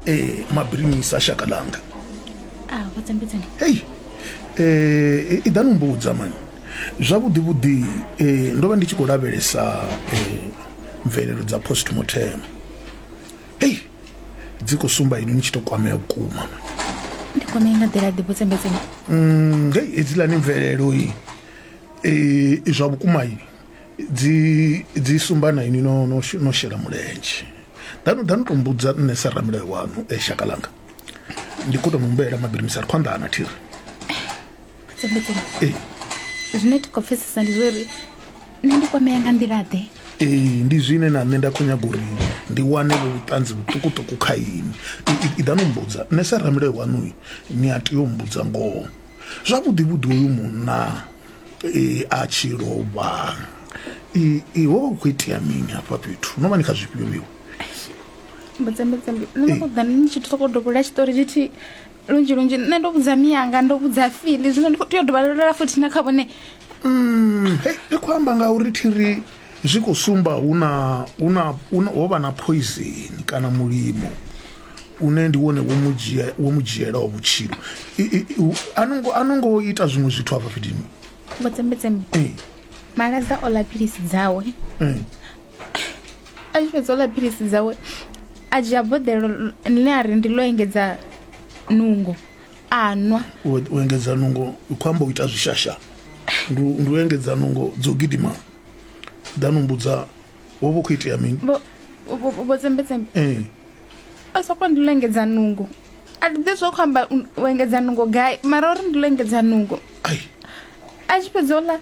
eh mabirimisa shaka langa ah vhudzambedzani hey eh i ḓani mbudza mani zwavhuḓi vhuḓi eh ndo vha ndi tshi khou lavhelesa eh mvelelo dza postmortem hey dzi khou sumba ini ni tshi to kwamea vhukuma ndi kwamea nga nḓila ḓi vhudzambedzani mm hey hedziḽani mvelelo i eh zwa vhukuma ini dzi dzi sumba na ini no no no shela mulenzhe danu danu to mbudza nṋe sa ramilayo wanu e shaka langa ndi kho to no mbuela mabiri misari khwanḓa ana thiri ee zwine ti khou pfesesa ndi zwo uri nṋe ndi kwamea nga nḓila ḓe ee ndi zwine na nṋe nda khou nyaga uri ndi wane vho vhuṱanzi vhuṱukuṱuku kha ini iḓa no mbudza nṋe sa ramilayo waṋu ni a tea u mbudza ngoho zwavhuḓi vhuḓi uyu munna a tshi lovha i ho vha hu khou itea mini hafha fhethu no vha ni kha zwifhio miwe mbedzambedzambi nṋe ndo ṱoḓa ni tshi soko dovhola tshiṱori tshithihi lunzhi lunzhi nṋe ndo vhudza miyanga ndo vhudza fili zwino ndi khou tea u dovhalolela futhi na kha vhone mm, i khou amba ngauri thiri Zwi khou sumba hu na, hu na, hu na, ho vha na phoizeni kana mulimo une ndi wone wo mu dzhia wo mu dzhielaho vhutshilo I- i- i- u- a no ngo- a no ngo ita zwiṅwe zwithu afha fhethu vhotsembetsembe Eh, malaza o ḽa philisi dzawe eh. a tshi fhedza o ḽa philisi dzawe a dzhia boḓelo ḽine a ri ndi ḽo engedza nungo a nwa u u engedza nungo u khou amba u ita zwishasha ndi u- ndi u engedza nungo dzo gidima danu mbudza wo vho khou itea mini vho vho- vho tsembetsembe Eh, a soko ndi lengedza nungo a ndi ḓi zwo khou amba u- u engedza nungo gai mara uri ndi lengedza nungo ai a tshi fhedza ola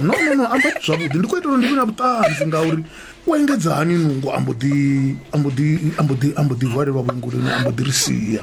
no no no amba zwavhuḓi ndi khou itela uri ndi vhe na vhuṱanzi ngauri u engedza hani nungo ambo ḓi ambo ḓi ambo ḓi ambo ḓi hwalelwa vhuengoloni ambo ḓi ri sia